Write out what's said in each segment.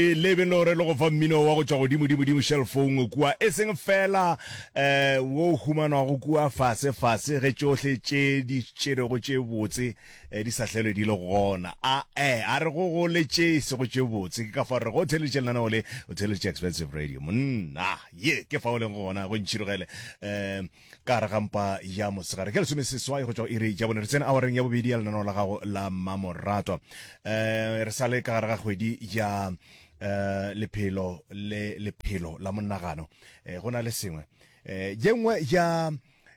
E lebe le gore le go fa mmino wa go tšwa godimo-dimo-dimo šelfong kua, e seng feela um wo o humanwago kua fase-fase ge tšohle tše di tšerego tše botse di sa hlelwe di le gona. A-e, a re go go le tše e sego tše botse. Ke ka fao re rego o theeleditše lenaneo le, o theeleditše Expensive Radio. Monna! Ye ke fao o lego gona, go ntšhirogele. Um Ka gare ga mpa ya mosegare ka lesomeseswai go tšwa go iri ya bone, re tsene awareng ya bobedi ya lenaneo la gago la Mmamoratwa. Eh, re sale ka gare ga kgwedi ya eh, lephelo le lephelo la monagano. Eh, go na le sengwe eh, ye nngwe ya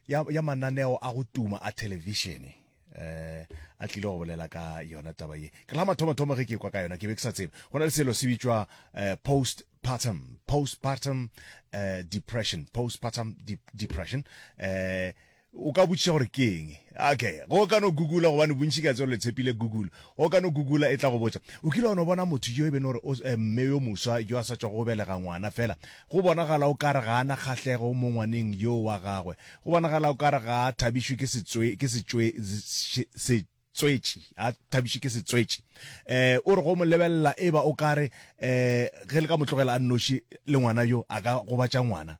ya, ya mananeo a go tuma a thelevishene eh a tlile go bolela ka yona taba ye ke la mathomo thomo ge ke kwa ka yona ke be ke sa tsebe go na le selo se bitšwa eh, post postpartum postpartum eh, depression postpartum de depression eh o ka botšiša gore ke eng okay go ka no google gobane bontši ka tselo le tshepile google go ka no google e tla go botša o kile wa no bona motho yo e bene gore eh, mme yo moswa yo a sa tswa go belega ngwana fela go bonagala o kare ga ana kgatlhego mo ngwaneng yo wa gagwe Go bonagala o ka re ga a thabišwe ke setswe, ke setswe, se, se, tswetši, a thabišwe ke setswetši. Um, o re go mo lebelela e ba o ka re, um, ge le ka mo tlogela a nnoši le ngwana yo, a ka gobatša ngwana.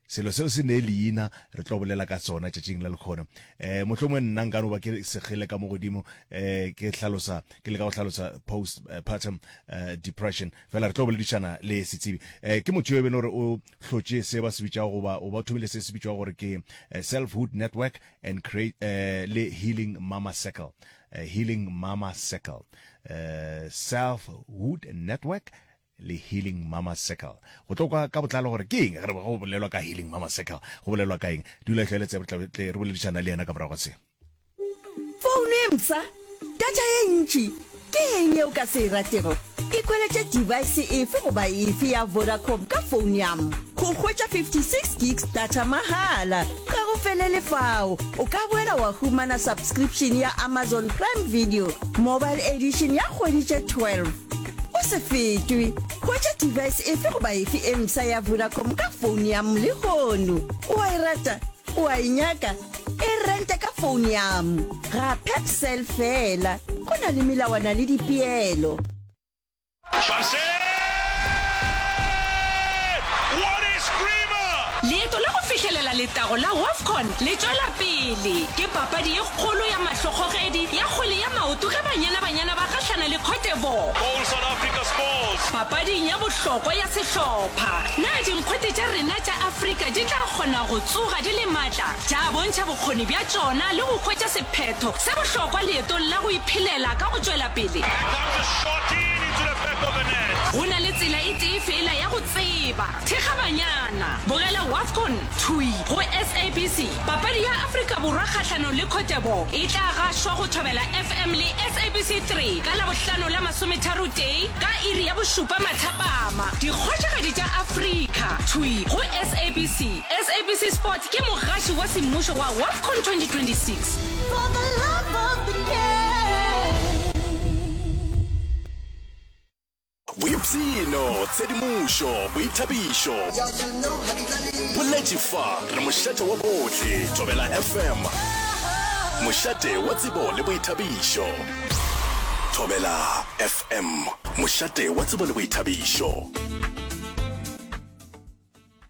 Selo seo se nee leina, re tlo bolela ka sona tšatšing la lekgono. Um, mohlomongwe nna nka no ba ke segile ka mo godimo, um, ke hlalosa, ke leka go hlalosa post, partum, um, depression. Fela re tlo boledišana le setsebi. Um, ke motho yo e be e le gore o. hlotše se ba se bitšago goba o ba thomile se se bitšwago gore ke eh, Selfhood Network and create eh, le Healing Mama Circle eh, Healing Mama Circle eh, Selfhood Network le healing mama circle go tlo kwa ka botlalo gore ke eng ge re go bolelwa ka healing mama circle go bolelwa ka eng dula tlhoeletse re boledišana le yena ka morago ga se Founu e mpsha, data ye ntši, ke eng yeo ka se e ratego? Ke kweletše device efe goba efe ya Vodacom ka founu yam go hwetša 56 gigs data mahala. Ga go felele fao, o ka boela wa humana subscription ya Amazon Prime Video Mobile Edition ya kgwedi tše 12. O se fetwe, hwetša device efe goba efe e mpsha ya Vodacom ka founu yam lehono. O a e rata? O a e nyaka? e rente ka phone yam ga pepsel fela go na le melawana le dipeelo leeto la go fihlelela letago la wafcon le tšwela pele ke papadi ye kgolo ya mahlokgogedi ya kgwele ya maoto ge banyana banyana ba gahlana le cotevor papading ya bohlokwa ya sehlopha na dinkgwete tša rena tša afrika di tla kgona go tsoga Di le matla, tša bontšha bokgoni bja tšona le go hwetša sephetho sa bohlokwa leetong la go iphelela ka go tšwela pele. Go na le tsela e tee feela ya go tseba. Thekga banyana. Bogela Wafcon, Thwi, go SABC. Papadi ya Afrika Borwa kgahlanong le Cote d'Ivoire e tla gašwa go Thobela FM le SABC 3 ka Labohlano la masometharotee ka iri ya bošupa mathapama. Dikgošigadi tša Afrika, Thwi, go SABC. SABC Sport ke mogaši wa semmušo wa WAFCON 2026. Boipshino, tshedimošo, boithabišo, boletši fa re mošate wa bohle. Thobela FM, mošate wa tsebo le boithabišo. Thobela FM, mošate wa tsebo le boithabišo.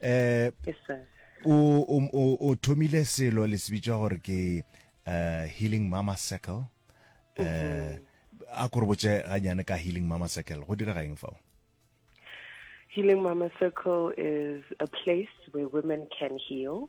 eh o o o thomile selo le sebitsa gore ke uh, healing mama circle eh uh, a kore botse ganyane ka healing mama circle go dira gaeng fao healing mama circle is a place where women can heal